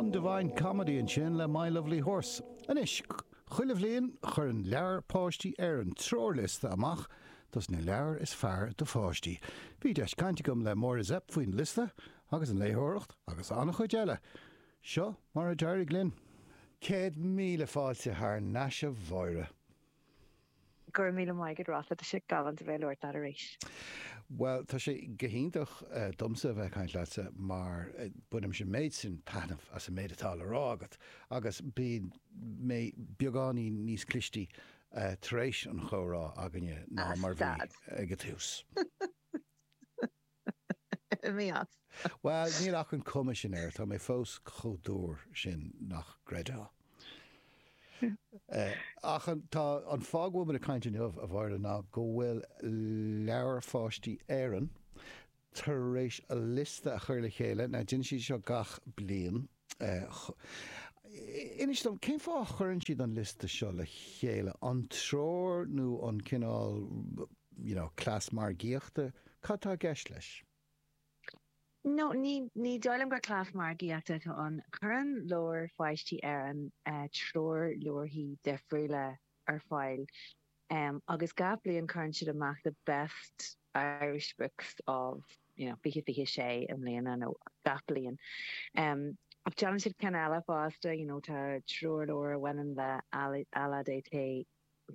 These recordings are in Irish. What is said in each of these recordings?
an Divine Comedy ansin le My Lovely Horse. Anois, chuile bhliain cuireann Leabhair Pháistí Éireann treoirliosta amach dos na leabhair is fearr do pháistí. Bhí deis caint agam le Máire Zepf faoin liosta agus an léitheoireacht agus an-chuid eile. Seo mar a d'éirigh linn. Céad míle fáilte thar n-ais a Mháire. Go raibh míle maith agat, Rosalind. Tá sé galánta a bheith ag labhairt leat arís. Bhuel, tá sé go hiontach domsa a bheith ag caint leatsa mar bainimse an méid sin taitneamh as an méid atá le rá agat agus bíonn mé beagáinín níos clistí tar éis an chomhrá againne ná mar a bhí ag an tús. Mheas. Bhuel, níl ach an chuma sin air, tá mé fós chomh dúr sin nach gcreidfeá. Eh, ach an, tá an fáth go bhfuil muid ag caint inniu a Mháire ná go bhfuil Leabhair Pháistí Éireann tar éis a liosta a chur le chéile, nó déanann siad seo gach bliain, Ach inis dom, cén fáth a gcuireann siad an liosta seo le chéile? An treoir nó an cineál you know cleas margaíochta? Cad tá i gceist leis? No, ní, ní dóigh liom gur cleas margaíochta atá ann. Cuireann Leabhair Pháistí Éireann treoirleabharthaí difriúla ar fáil M, agus gach bliain cuireann siad amach the best Irish books of you know fiche fiche a sé i mbliana nó gach bliain. M, Ach déanann siad cinn eile fosta you know tá treoirleabhar a bhaineann le LADT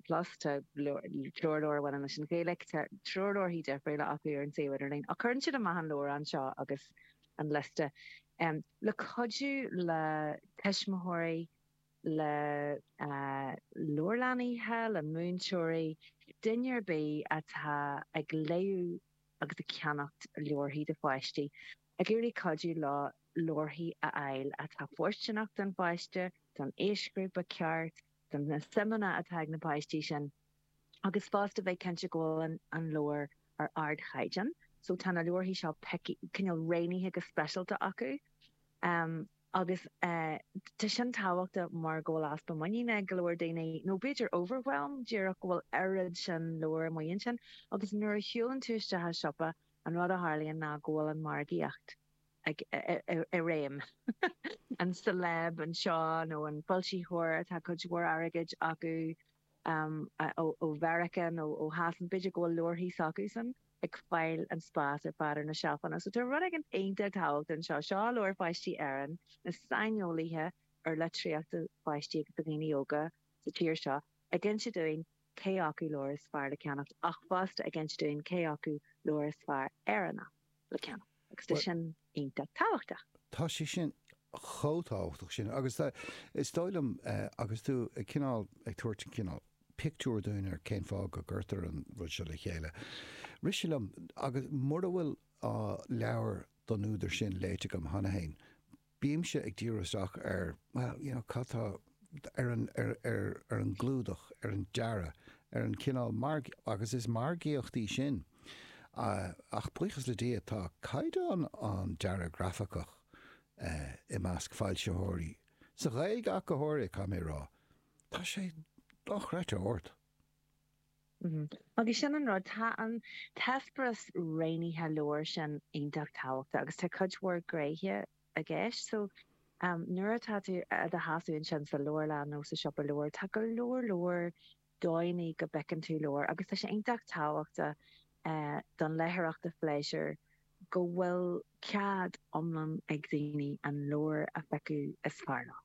plus tá treoirleabhar a bhaineann leis an Ghaeilge tá treoirleabharthaí difriúla acu ar an suíomh idirlín ach cuireann siad amach an leabhrán seo agus an liosta le cuidiú le tuismitheoirí le leabharlannaithe, le múinteoirí, duine ar bith atá ag léamh agus ag ceannacht leabharthaí do pháistí, ag iarraidh cuidiú leo leabharthaí a fháil atá fóirsteanach don pháiste, don aoisghrúpa ceart, do na suimeanna atá ag na páistí sin, agus fosta bheith cinnte go bhfuil an leabhar ar ardchaighdeán. So tá na leabharthaí seo cineál rianaithe go speisialta acu. Agus tá sin tábhachtach mar go bhfuil easpa muiníne ag go leor daoine, nó b'fhéidir overwhelm díreach go bhfuil oiread sin leabhar amuigh ansin. Agus nuair a shiúlann tú isteach i siopa, an rud a tharlaíonn ná go bhfuil an mhargaíocht i réim. An celeb anseo nó an foilsitheoir a bhfuil cuid mhór airgid acu, ó Mheiriceá nó ó Shasana, b'fhéidir go bhfuil leabharthaí s'acusan ag fáil an spás ar fad ar na seilfeanna. So tá rud éigin iontach tábhachtach anseo. Seo Leabhair Pháistí Éireann, na saineolaithe ar litríocht do pháistí agus do dhaoine óga sa tír seo ag inse dúinn cé acu leabhair is fearr le ceannacht ach fosta ag inse dúinn cé acu leabhair is fearr Éireannach. le ceann, agus tá sin iontach tábhachtach. Tá sé sin chomh tábhachtach sin agus, is dóigh liom, agus tú cineál ag tabhairt cineál pictiúr dúinn ar cén fáth go gcuirtear an rud seo le chéile. Rith sé liom agus mura bhfuil leabhar den údar sin léite agam cheana féin, Bímse ag díriú isteach ar, bhuel, you know, cad tá, ar an, ar, ar, ar an gclúdach, ar an dearadh, ar an chineál marg, agus is margaíocht í sin. Ach buíochas le Dia, tá caighdeán an dearaidh ghrafaic i measc foilsitheoirí, sa Ghaeilge ach go háirithe, caithfidh mé a rá, tá sé dochreidte ard. Agus sin an rud, tá an t-eispéireas roghnaithe leabhar sin iontach tábhachtach agus tá cuid mhór gréithe i gceist. So, nuair atá tú i do sheasamh ansin sa leabharlann nó sa siopa leabhar, tá go leor leor dóigheanna go bhfeiceann tú leabhair agus tá sé iontach tábhachtach don léitheoireacht phléisiúir go bhfuil cead iomlán ag daoine an leabhar a phiocadh is fearr leo.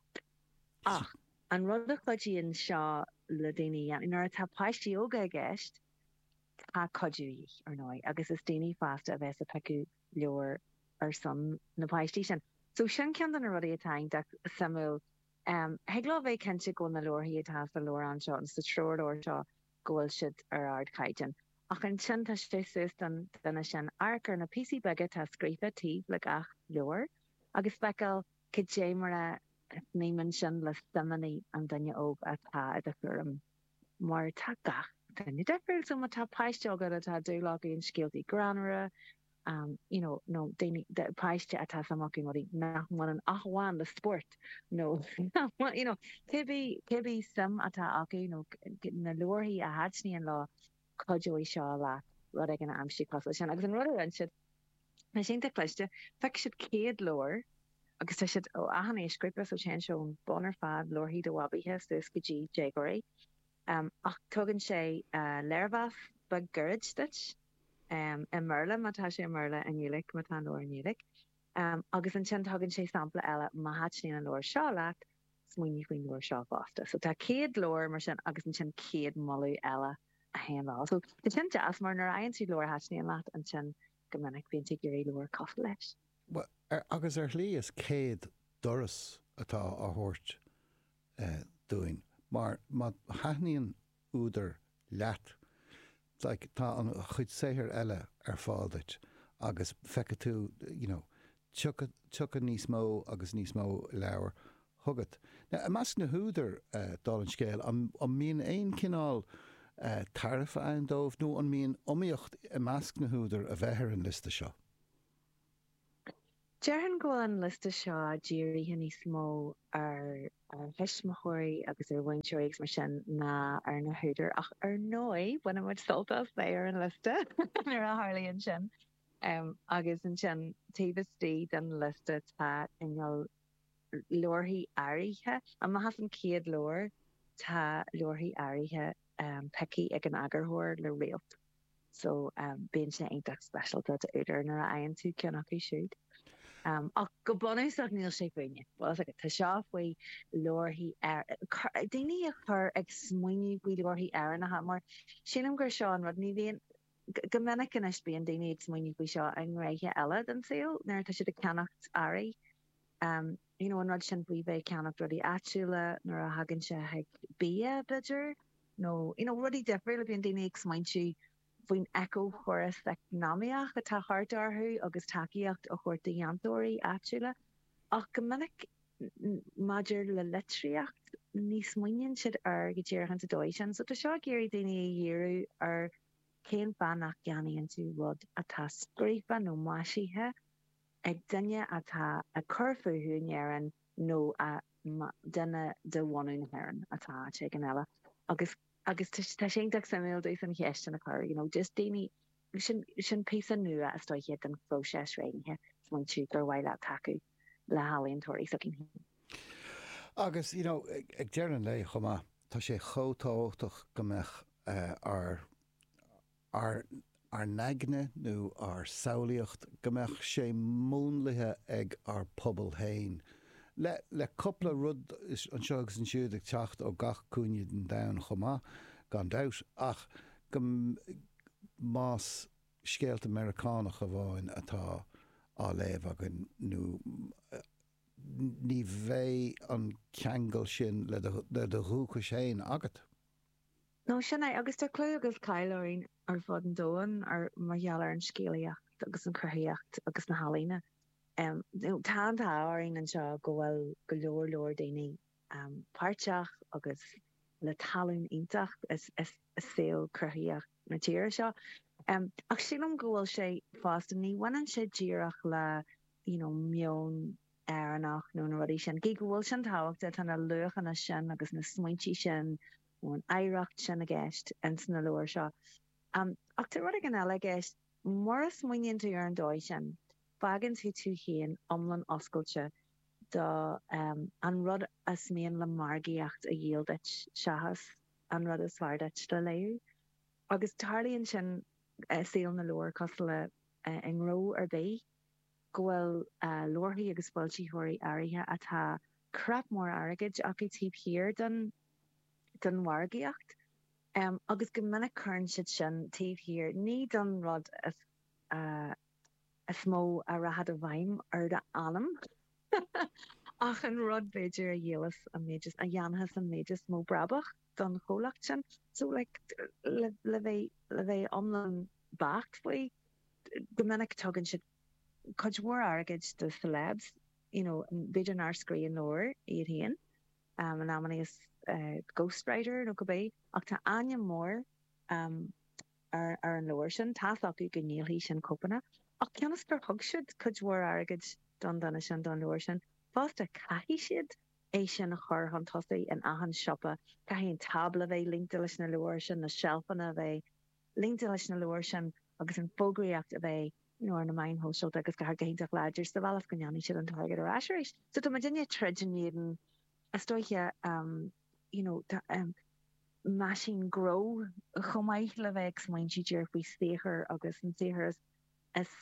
Ach. An rud a chuidíonn seo le daoine a dhéanamh, nuair atá páistí óga i gceist, tá cuidiú de dhíth, ar ndóigh, agus is daoine fásta a bheas ag piocadh leabhar ar son na bpáistí sin. So sin ceann de na rudaí atá iontach suimiúil. Thig leo a bheith cinnte go bhfuil na leabharthaí atá sa leabhrán seo, nó sa treoirleabhar seo, go bhfuil siad ar ardchaighdeán. Ach ansin tá sé suas don duine sin amharc ar na píosaí beaga atá scríofa taobh le gach leabhar agus feiceáil Cad é mar a shníomhann sin le suimeanna an duine óg atá i do chúram? Mar tá gach duine difriúil, so má tá páiste agat atá dúil acu in scéaltaí greannmhara, you know, nó daoine, páiste atá suim acu in rudaí nach mbaineann ach amháin le spórt nó you know, cé bith, cé bith suim atá acu nó na leabharthaí a thaitníonn leo, cuideoidh seo leat rud éigin a aimsiú cosúil leis sin. Agus an rud a rinne siad. Tá siad iontach cliste. Phioc siad 100 leabhar agus tá siad ó achan aoisghrúpa, so téann sé ón mbun ar fad, leabharthaí do bhabaithe, suas go dtí déagóirí. Ach tugann sé léirmheas beag gairid duit, i mBéarla má tá sé i mBéarla, i nGaeilge má tá an leabhar i nGaeilge, agus ansin tugann sé sampla eile, má thaitníonn an leabhar seo leat, Smaoinigh faoin leabhar seo fosta. So tá 100 leabhar mar sin agus ansin 100 moladh eile a théann leo. So tá sin deas mar nuair a fhaigheann tú leabhar a thaitníonn leat ansin go minic bíonn tú ag iarraidh leabhar cosúil leis. Bhuel, agus ar shlí is 100 doras atá á thabhairt dúinn mar má thaitníonn údar leat. Tá an chuid saothair eile ar fáil duit agus feicfidh tú you know tiocfaidh níos mó agus níos mó leabhar chugat. Now, i measc na húdar, dála an scéil, an mbíonn aon chineál tairbhe ann dóibh nó an mbíonn iomaíocht i measc na húdar a bheith ar an liosta seo? Déarfainn go bhfuil an liosta seo dírithe níos mó ar thuismitheoirí agus ar mhúinteoirí agus mar sin ná ar na húdair, ach ar ndóigh, baineann muid sult as bheith ar an liosta nuair a tharlaíonn sin. Agus ansin, taobh istigh den liosta, tá cineál leabharthaí áirithe. Amach as an gcéad leabhar, tá leabharthaí áirithe pioctha ag an eagarthóir le réalt. so bíonn sé iontach speisialta d'údar nuair a fhaigheann tú ceann acu siúd. Ach go bunúsach níl sé fúinne. Tá seo faoi leabharthaí Éireannacha, daoine a chur ag smaointiú faoi leabharthaí Éireannacha mar sílim gur seo an rud, ní bhíonn, go minic anois bíonn daoine ag smaointiú faoi seo i ngnéithe eile den saol nuair atá siad ag ceannacht earraí. you know an rud sin faoi bheith ag ceannacht rudaí áitiúla nuair a thagann sé chuig bia b'fhéidir nó you know rudaí difriúla bíonn daoine ag smaointiú faoin éiceachóras eacnamaíoch atá thart orthu agus tacaíocht a thabhairt do dhéantóirí áitiúla ach go minic maidir le litríocht ní smaoiníonn siad air go díreach insa dóigh sin so tá seo ag iarraidh daoine a dhíriú ar cén fáth nach gceannaíonn tú rud atá scríofa nó maisithe ag duine atá ag cur fúthu in Éirinn nó a duine de bhunadh na hÉireann atá áit éigin eile agus agus tá sé iontach suimiúil díreach an cheist sin a chur you know just daoine sin sin píosa nua a chur isteach i do phróiseas réithe smaointiú gur mhaith leat tacú le healaíontóirí s'againn féin. Agus you know ag deireadh an lae chomh maith tá sé chomh tábhachtach go mbeadh ár ar ár n-aigne nó ár samhlaíocht, go mbeadh sé múnlaithe ag ár bpobal féin, le cupla rud anseo agus ansiúd ag teacht ó gach cúinne den domhan chomh maith, gan dabht, ach go más scéalta Meiriceánacha amháin atá á léamh againn nó ní bheidh an ceangal sin le do dhúchas féin agat. Nó sin é, agus tá clú agus cáil orainn ar fud an domhain mar gheall ar an scéalaíocht agus an chruthaitheacht agus na healaíona. Tá an t-ádh orainn anseo go bhfuil go leor leor daoine páirteach agus le tallann iontach i saol cruthaitheach na tíre seo. Ach sílim go bhfuil sé fosta, ní bhaineann sé díreach le meon, Éireannach nó na rudaí sin. Gidh go bhfuil sin tábhachtach, tá na luachanna sin agus na smaointe sin nó an oidhreacht sin i gceist ins na leabhair seo. Ach tá rud éigin eile i gceist. Mura smaoiníonn tú ar an dóigh sin, fágann tú tú féin iomlán oscailte do an rud is mian le margaíocht a dhíol duit seachas an rud is fearr duit le léamh. Agus tarlaíonn sin i saol na leabhar cosúil le i ngnó ar bith. go bhfuil leabharthaí agus foilsitheoirí áirithe atá crap mór airgid acu taobh thiar den mhargaíocht agus go minic cuireann siad sin taobh thiar ní don rud is mó a rachaidh i bhfeidhm ar d'anam ach an rud b'fhéidir a dhíolfas an méid is, a dhéanfas an méid is mó brabach don chomhlacht sin. So like le bheith iomlán beacht faoi, Go minic tugann siad cuid mhór airgid do celebs, you know, b'fhéidir nár scríobh an leabhar iad féin, amannaí is ghost writer nó cibé, ach tá ainm mór ar an leabhar sin, tá's acu go ndíolfaidh sin cóipeanna, ach cionn is gur thug siad cuid mhór airgid don duine sin, don leabhar sin, fosta caithfidh siad é sin a chur chun tosaigh in achan siopa, caithfidh an tábla bheith líonta leis na leabhair sin, na seilfeanna a bheith. líonta leis na leabhair sin agus an fógraíocht a bheith ar na meáin sóisialta agus go háit go hiontach láidir sa bhealach is go ndéanfaidh siad an t-airgead ar ais arís. So tá muid inniu ag troid in éadan, is dóiche, you know, tá meaisín gnó chomh maith le bheith ag smaointiú díreach faoi saothar agus an saothar is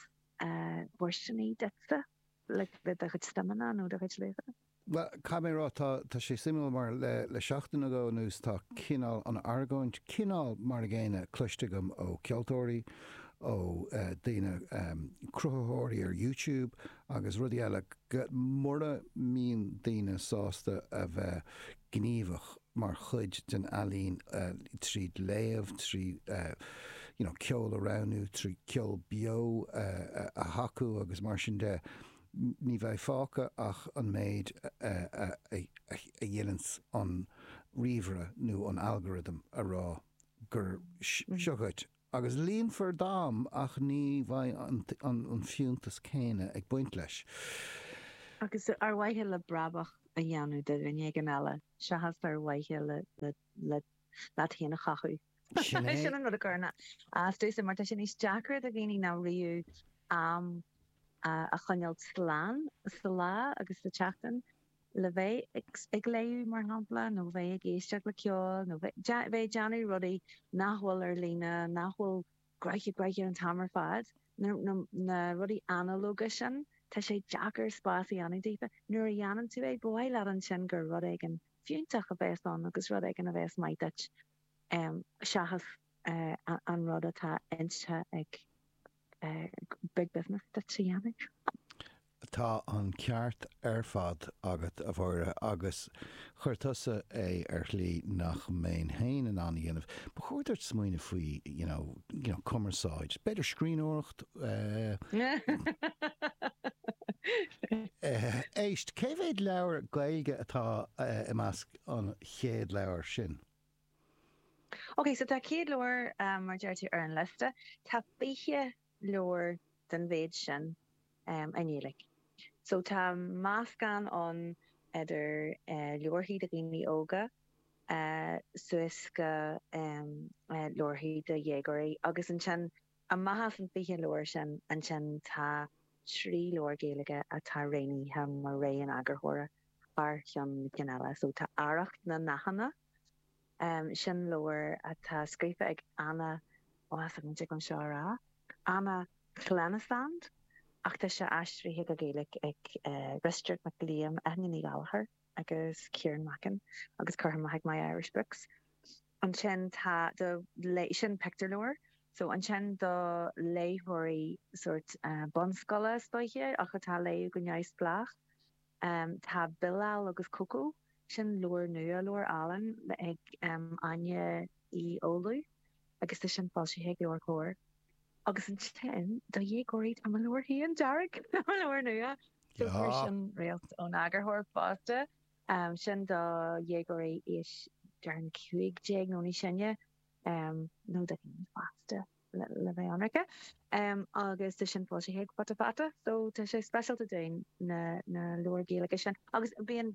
fóirsteanaí duitse le do chuid suimeanna nó do chuid luachanna. Bhuel, caithfidh mé a rá, tá sé suimiúil mar le seachtain nó dhó anuas tá cineál an argóint, cineál mar an gcéanna, cloiste agam ó cheoltóirí, ó daoine, cruthaitheoirí ar YouTube agus rudaí eile, mura mbíonn daoine sásta a bheith gníomhach mar chuid den ealaín trí léamh, trí ceol a roghnú, trí ceol beo a thacú agus mar sin de, ní bheidh fágtha ach an méid a dhéanann an ríomhaire nó an algorithm a rá go, seo dhuit, agus líonfar d'am ach ní bheidh an fiúntas céanna ag baint leis. Agus ar mhaithe le brabach a dhéanamh do dhuine éigin eile seachas ar mhaithe leat féin a chothú. Sin é. Sin an rud a chuireann as domhsa, mar tá sé níos deacra do dhaoine ná riamh am a choinneáilt slán, sa lá agus sa tseachtain, le bheith ag léamh, mar shampla, nó bheith ag éisteacht le ceol, nó bheith ag déanamh rudaí nach bhfuil ar líne, nach bhfuil graithe graithe an t-am ar fad. Na rudaí analóga sin, tá sé deacair spás a dhéanamh daofa. Nuair a dhéanann tú é, ba mhaith leat ansin gur rud éigin fiúntach a bheas ann agus rud éigin a bheas maith duit. seachas an rud atá inste ag Big Business duit a dhéanamh. Tá an ceart ar fad agat, a Mháire, agus chuir tusa é ar shlí nach mbeinn féin in ann a dhéanamh. Ba chóir duit smaoineamh faoi, you know, cumarsáid, b'fhéidir scríbhneoireacht? Éist, cé mhéad leabhar Gaeilge atá i measc an chéad leabhar sin. OK, so tá 100 leabhar, mar a deir tú, ar an liosta. Tá 20 leabhar den mhéid sin i nGaeilge. So tá meascán ann idir leabharthaí do dhaoine óga suas go leabharthaí do dhéagóirí. Agus ansin, amach as an 20 leabhar sin, ansin tá trí leabhar Gaeilge atá roghnaithe mar rogha an eagarthóra. thar cheann na cinn eile so tá Arracht na nDathanna, sin leabhar atá scríofa ag Anna, ó tá mé dtig liom seo a rá, Anna Llenas ach tá sé aistrithe go Gaeilge ag Risteard Mac Liam, Eithne Ní Ghallchobhair agus Ciarán Mackin agus curtha amach ag My Irish Books. Ansin tá do, sin pictiúrleabhar so ansin do léitheoirí sórt bunscoile is dóiche ach atá ag léamh go neamhspleách. Um Tá Bilal agus Coco, sin leabhar nua, leabhar álainn ag um Áine Uí Fhoghlú agus tá sin foilsithe ag Leabhair Comhar. Agus ansin do dhéagóirí tá mo leabhar féin, Dearg, mo leabhar nua, so fuair sin réalt ón eagarthóir fosta, um sin do dhéagóirí aois, déarfainn, cúig déag nó níos sine, um nó do dhaoine fásta. le bheith ionraice, agus tá sin foilsithe ag Futa Fata so tá sé speisialta dúinn na na leabhair Ghaeilge sin agus bíonn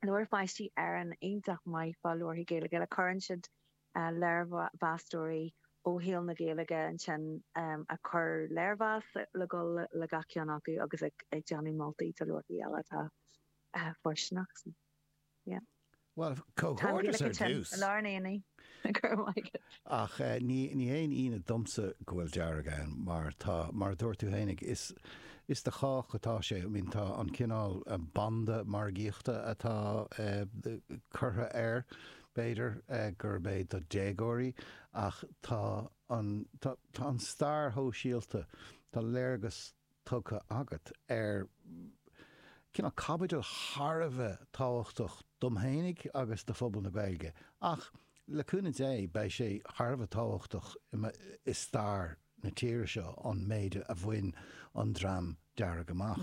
Leabhair Pháistí Éireann iontach maith fá leabharthaí Gaeilge le cuireann siad léirmheastóirí ó shaol na Gaeilge ansin ag cur léirmheas le dul le gach ceann acu agus ag déanamh moltaí do leabharthaí eile atá fóirsteanach so. Yeah. Bhuel, comhghairdeas ar dtús. An Lár Naíonaí. Go raibh maith agat. Ach ní haon ionadh domsa go bhfuil Dearg ann mar tá, mar a dúirt tú fhéinig, is, is do chách atá sé. I mean, tá an cineál banda margaíochta atá curtha air, b'fhéidir, gurb é do déagóirí ach tá an, tá, tá an stair shóisialta, tá léargas tugtha agat ar cineál caibidil thar a bheith tábhachtach dom fhéinig agus do phobal na Gaeilge, ach le cúnamh Dé beidh sé thar a bheith tábhachtach i stair na tíre seo, an méid a bhain an Dream Dearg amach.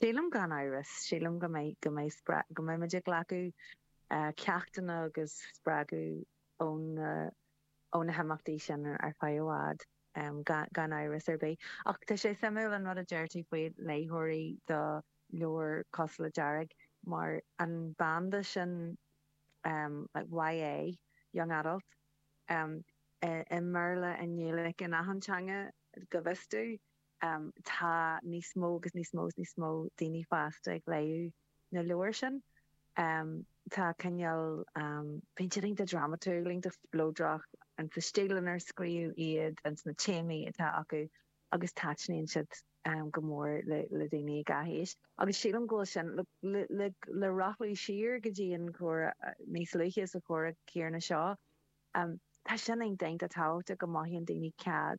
Sílim gan amhras, sílim go mbeidh muid ag glacadh ceachtanna agus spreagadh. ó na himeachtaí sin ar feadh i bhfad, gan amhras ar bith. Ach tá sé suimiúil an rud a deir tú faoi léitheoirí do leabhar cosúil le Dearg, mar an banda sin YA, young adult, i mBéarla, i nGaeilge, in achan teanga, go bhfios domh. Tá níos mó agus níos mó is níos mó daoine fásta ag léamh na leabhair sin. Tá cineál bíonn siad iontach drámatúil, iontach spleodrach ins an stíl inar scríobhadh iad ins na téamaí atá acu agus taitníonn siad go mór le daoine ag achan aois. Agus sílim go bhfuil sin le rothlú siar go dtí an comhrá níos luaithe sa chomhrá céarna seo. Tá sin iontach tábhachtach go mothaíonn daoine cead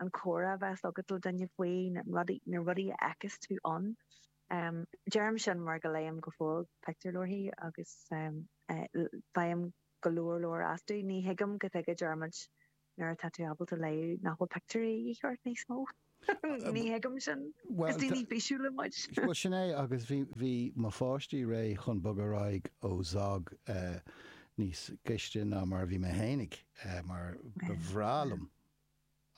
an comhrá a bheas agat le duine faoi na rudaí a fheiceas tú ann. Deirim sin mar go léim go fóill pictiúrleabharthaí agus faighim go leor leor astu. Ní thuigim cad tuige a ndeir muid nuair atá tú ábalta léamh nach bhfuil pictiúirí de dhíth ort níos mó. Ní thuigim sin. Is daoine físiúla muid. Bhuel, sin é agus bhí mo pháistí réidh chun bogadh ar aghaidh ó Zog níos gaiste ná mar a bhí mé fhéinig mar ba bhreá liom.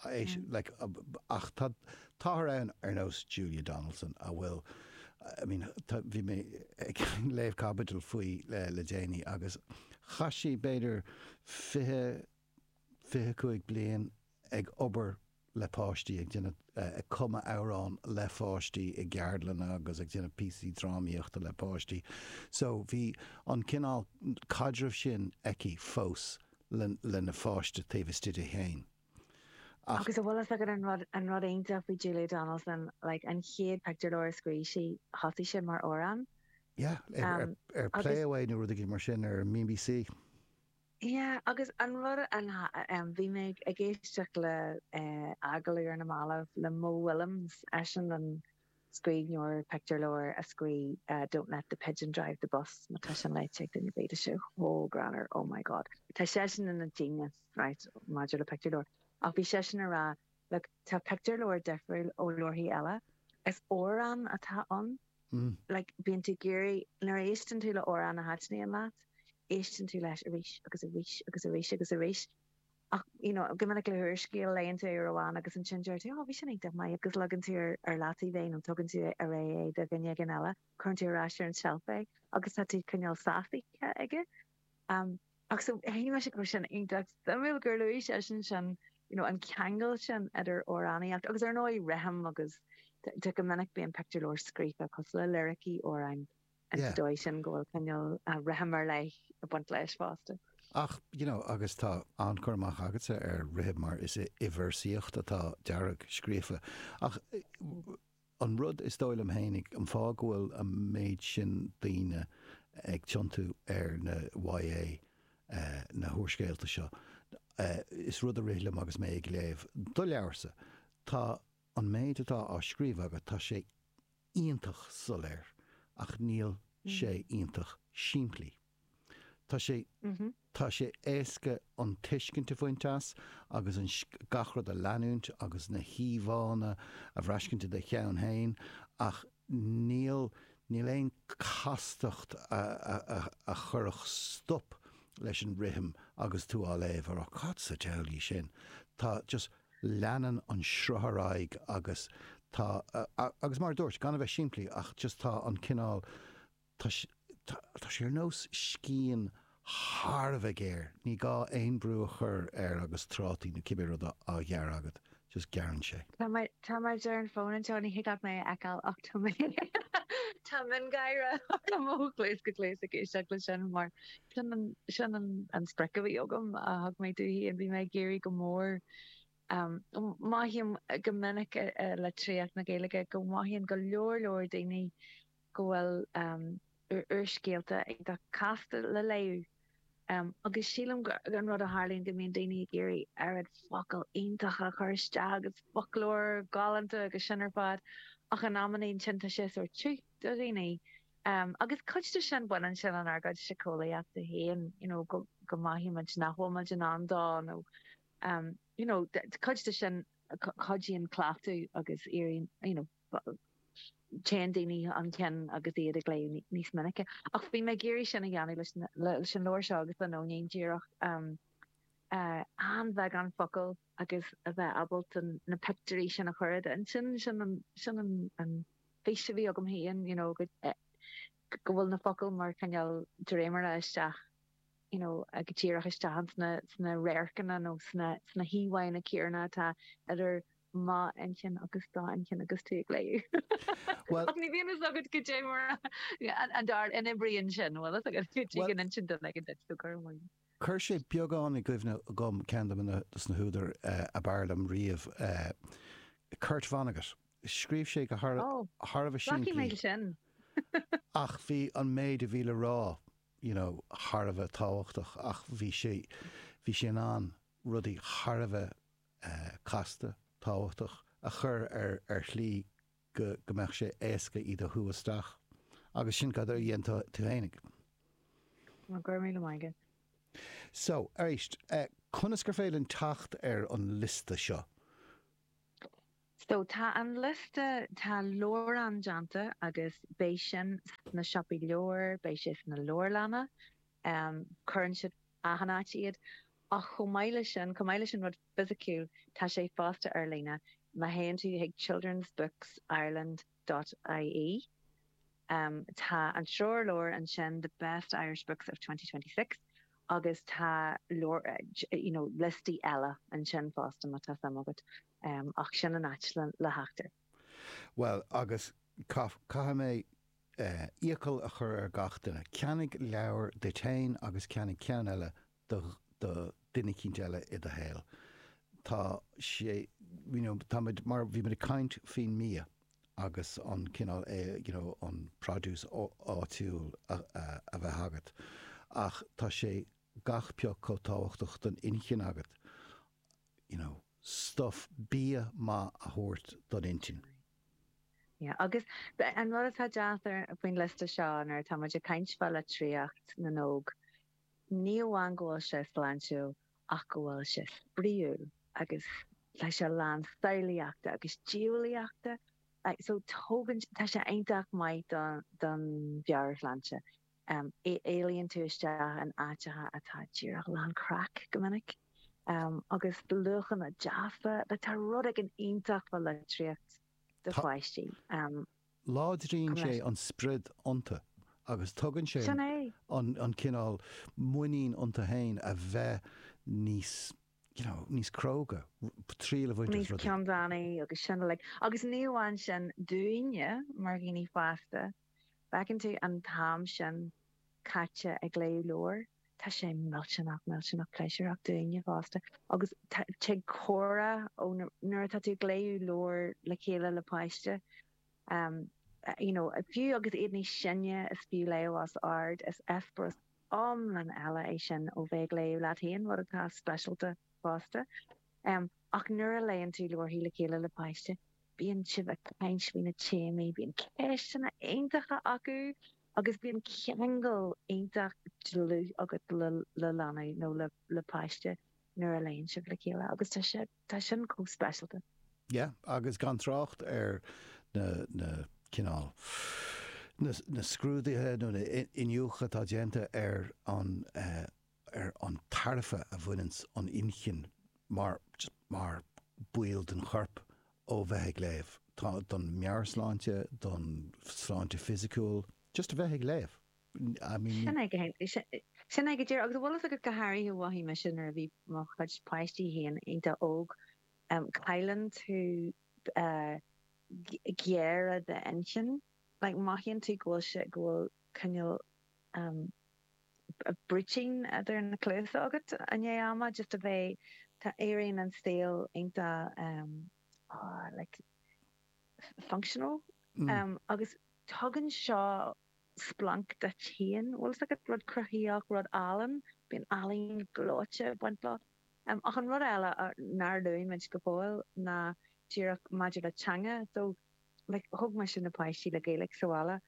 Ach tá údair ann ar nós Julia Donaldson a bhfuil, I mean, bhí mé ag léamh caibidil faoi le déanaí agus chaith sí b'fhéidir fiche, fiche cúig bliain ag obair le páistí, ag déanamh, ag cumadh amhrán le pháistí i gceardlanna agus ag déanamh píosaí drámaíochta le páistí. So bhí an cineál caidreamh sin aici fós. lena pháiste taobh istigh di féin. Ach. Agus an bhfuil a fhios agat an rud, an rud iontach faoi Julia Donaldson, like, an chéad pictiúrleabhar a scríobh sí, thosaigh sé mar amhrán. Yeah, ar, ar Play Away nó rud éigin mar sin, ar an mBBC. Yeah, agus an rud an, em, bhí mé ag éisteacht le, eh, agallamh ar na mallaibh le Mo Willems, eisean an, scríbhneoir pictiúrleabhair a scrígh Don't let the pigeon drive the bus, má tá sin léite ag duine bíonn sé chomh greannmhar, oh my God. Tá seisean ina ghenius, right, maidir le pictiúrleabhair. Ach bhí seisean ag rá, look, tá pictiúrleabhair difriúil ó leabharthaí eile. Is amhrán atá ann. Like, bíonn tú ag iarraidh, nuair a éisteann tú le amhrán a thaitníonn leat, éisteann tú leis arís agus arís agus arís agus arís. Ach, you know, go minic le húrscéal, léann tú é uair amháin agus ansin deir tú, 'Ó, bhí sin iontach maith, agus leagann tú ar, ar leataobh é nó tugann tú ar ais é do dhuine éigin eile, cuireann tú ar ais ar an tseilf é agus tá tú cineál sásaithe aige. Um, ach so, shíl mé sin go raibh sin iontach suimiúil gur luaigh seisean sin, you know, an ceangal sin idir amhránaíocht agus, ar ndóigh, rithim agus, tá go minic bíonn pictiúrleabhair scríofa cosúil le liricí amhráin an dóigh sin go bhfuil cineál rithim ar leith ag baint leis fosta. Ach, you know, agus tá an-chur amach agatsa ar rithim mar is i véarsaíocht atá Dearg scríofa. Ach an rud is dóigh liom féin, an fáth go bhfuil an méid sin daoine ag tiontú ar na YA, na húrscéalta seo, is rud a rith liom agus mé ag léamh do leabharsa, tá an méid atá á scríobh agat, tá sé, iontach soiléir ach níl sé iontach simplí. Tá sé Tá sé éasca an tuiscint a bhaint as agus an gach rud a leanúint agus na híomhánna a bhraiscint i do cheann féin ach níl níl aon castacht a chuirfeadh stop leis an rithim agus tú á léamh, ará, cad sa diabhal é sin? Tá just. leanann an sruth ar aghaidh agus tá, agus mar a dúirt mé, gan a bheith simplí, ach just tá an cineál, tá sí, tá sí ar nós scian thar a bheith géar, ní gá aon brú a chur air agus trátaí nó cibé rud á ghearradh agat, just gearrann sé. Tá mé, tá mé ar an bhfón anseo, ní thig leat mé a fheiceáil ach tá mé, tá mé ag gáire ó chluas go cluas ag éisteacht leis sin mar Sin an sprioc a bhí agam a thug mé faoi, bhí mé ag iarraidh go mór, mothaím go minic i litríocht na Gaeilge go mothaíonn go leor leor daoine go bhfuil úrscéalta iontach casta le léamh agus sílim an rud a tharlaíonn go mbíonn daoine ag iarraidh oiread focal iontach a chur isteach agus foclóir galánta agus sin ar fad ach in amannaí, ansin tá sé sórt tiubh. do dhaoine. Agus cuid de sin, baineann sin lenár gcuid siceolaíochta féin, you know go go mothaímid nach bhfuil muid in ann dó nó you know cuid de sin, cuidíonn cleachtadh agus éiríonn you know téann daoine chun cinn agus iad ag léamh níos minice. Ach bhí mé ag iarraidh sin a dhéanamh leis leis an leabhar seo agus le Nóinín díreach an-bheagán focal agus a bheith ábalta na pictiúirí sin a chur, sin sin sin an fís a bhí agam féin, you know, go bhfuil na focla mar cineál dréimire isteach, you know, ag díreach isteach ann sna radharcanna nó sna híomhánna céanna atá idir mo intinn agus do intinn agus tú ag léamh. Ach ní bhíonn fhios agat caidé mar, ar ndóigh, a n-oibríonn sin, bhfuil fhios agat go dtí go n-inseann duine éigin duit tú cur amú. Chuir sé beagán i gcuimhne dhom ceann de na húdair ab fhearr liom riamh, Kurt Vonnegut. Scríobh sé go thar a bheith simplí ach bhí an méid a bhí le rá you know thar a bheith tábhachtach ach bhí sé bhí sé in ann rudaí thar a bheith casta, tábhachtach a chur ar shlí go mbeadh sé éasca iad a shú isteach. Agus sin cad a dhein tú fhéinig. Go raibh míle maith agat. So, arís, conas gur féidir linn teacht ar an liosta seo? So, tá an liosta, tá leabhrán déanta agus beidh sin sna siopaí leabhar, beidh sé sna leabharlanna. cuireann siad achan áit iad. Ach chomh maith leis sin, chomh maith leis an rud fisiciúil, tá sé fosta ar líne. Má théann tú chuig childrensbooksireland dot ie, tá an treoirleabhar ansin, The Best Irish Books of Twenty Twenty-Six, agus tá leabhair, you know, liostaí eile ansin fosta, má tá suim agat. Ach sin an áit le theacht air. Bhuel, agus caithfidh mé iachall a chur ar gach duine, Ceannaigh leabhar duit féin agus ceannaigh ceann eile do dhuine eicínt eile i do shaol. Tá sé, you know, tá muid mar, bhí muid ag caint faoin mbia agus an cineál eh, you know, an produce áitiúil a bheith agat ach tá sé gach pioc chomh tábhachtach don inchinn agat, you know, stuff, bia maith a thabhairt don intinn. Yeah, agus an rud atá deacair faoin liosta seo nuair atá muid ag caint fá litríocht na n-óg, ní amháin go bhfuil sé sláintiúil ach go bhfuil sé spraíúil agus tá sé lán samhlaíochta agus diabhlaíochta, so tógann, tá sé iontach maith don mheabhairshláinte. Éalaíonn tú isteach in áiteacha atá díreach lán craic go minic, agus luachanna deasa, like tá rud éigin iontach fá litríocht do pháistí. Láidríonn sé an spriod iontu agus tugann sé an cineál muinín iontu féin a bheith níos you know níos cróga, triail a bhaint as rudaí. Níos ceanndánaí agus sin uilig. Agus ní amháin sin dúinne mar dhaoine fásta, feiceann tú an t-am sin caite ag léamh leabhair, tá sé millteanach, millteanach pléisiúrach dúinne fosta agus tig comhrá ó na, nuair atá tú ag léamh leabhair le chéile le páiste, you know, fiú agus iad níos sine, is fiú léamh os ard, is eispéireas iomlán eile é sin ó bheith ag léamh leat féin, rud atá speisialta fosta. M, Ach nuair a léann tú leabharthaí le chéile le páiste, bíonn sibh ag caint faoi na téamaí, bíonn ceisteanna iontacha acu agus bíonn ceangal iontach dlúth agat le leanbh nó le páiste nuair a léann sibh le chéile agus tá sé, tá sin chomh speisialta. Yeah, agus gan trácht ar na, na cineál, na, na scrúduithe nó na iniúchadh atá déanta ar an, eh, ar an tairbhe a bhaineanns an inchinn mar mar ball den chorp ó bheith ag léamh, don meabhairshláinte, don sláinte fisiciúil, just a bheith ag léamh. I mean ní. Sin é go hé, sin é go díreach. Agus bhfuil 's agat go háirithe mhothaigh mise nuair a bhí mo chuid páistí féin iontach óg, cailleann tú géire d'inchinn, like mothaíonn tú go bhfuil sé, go bhfuil cineál brúitín idir na cluasa agat i ndiaidh ama just a bheith tá éiríonn an saol iontach like functional agus tugann seo splanc duit féin bhfuil 's agat rud cruthaíoch rud álainn bíonn ealaín gleoite ag baint leo ach an rud eile nár luaigh muid go fóill ná díreach maidir le teanga so like thóg mise na páistí le Gaeilge sa bhaile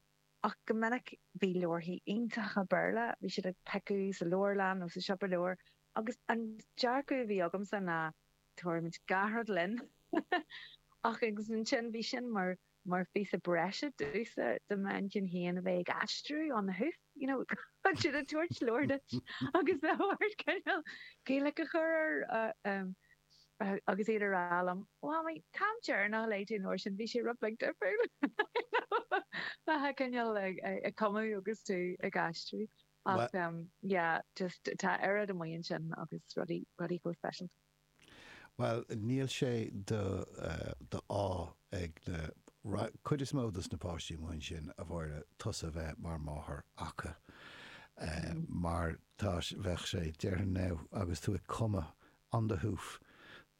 Ach go minic bhí leabharthaí iontacha Béarla, bhí siad ag piocadh sa leabharlann nó sa siopa leabhar, agus an dearcadh a bhí agamsa ná, tabharfaimid gach rud linn. Ach agus ansin bhí sin mar mar phíosa breise domhsa, do m'inchinn féin a bheith ag aistriú on the hoof, you know, bíonn siad ag tabhairt leabhar duit agus ort cineál Gaeilge a chur air. agus iad a rá liom, 'Mhamaí, an t-am deireanach a léigh tú an uair sin, bhí sé rud beag difriúil'. Nó tá cineál ag cumadh agus tú ag aistriú. Ach yeah, just tá oiread amuigh ansin agus rudaí chomh speisialta. Bhuel, níl sé d'ádh ag na, cuid is mó des na páistí amuigh ansin, a Mháire, tusa bheith mar máthair acu. Mar tá, bheadh sé, déarfainn now, agus tú ag cumadh on the hoof.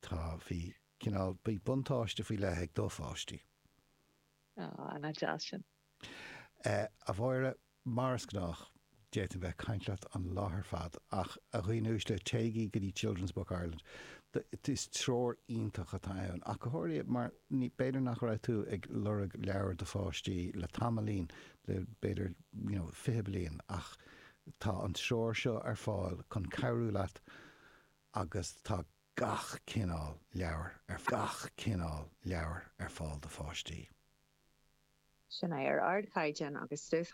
Tá, bhí, cineál, bhí buntáiste faoi leith ag do pháistí. Á, nach deas sin. A Mháire, mar is gnách, d'fhéadfainn bheith ag caint leat an lá ar fad ach, a dhaoine uaisle, téigí go dtí Children's Books Ireland. Is treoir iontach atá ann ach go háirithe mar b'fhéidir nach raibh tú ag lorg leabhair do pháistí le tamaillín, le b'fhéidir, you know, fiche bliain ach tá an treoir seo ar fáil chun cabhrú leat agus tá gach cineál leabhair, gach cineál leabhair ar fáil do pháistí. Sin é, ar ardchaighdeán agus stuif.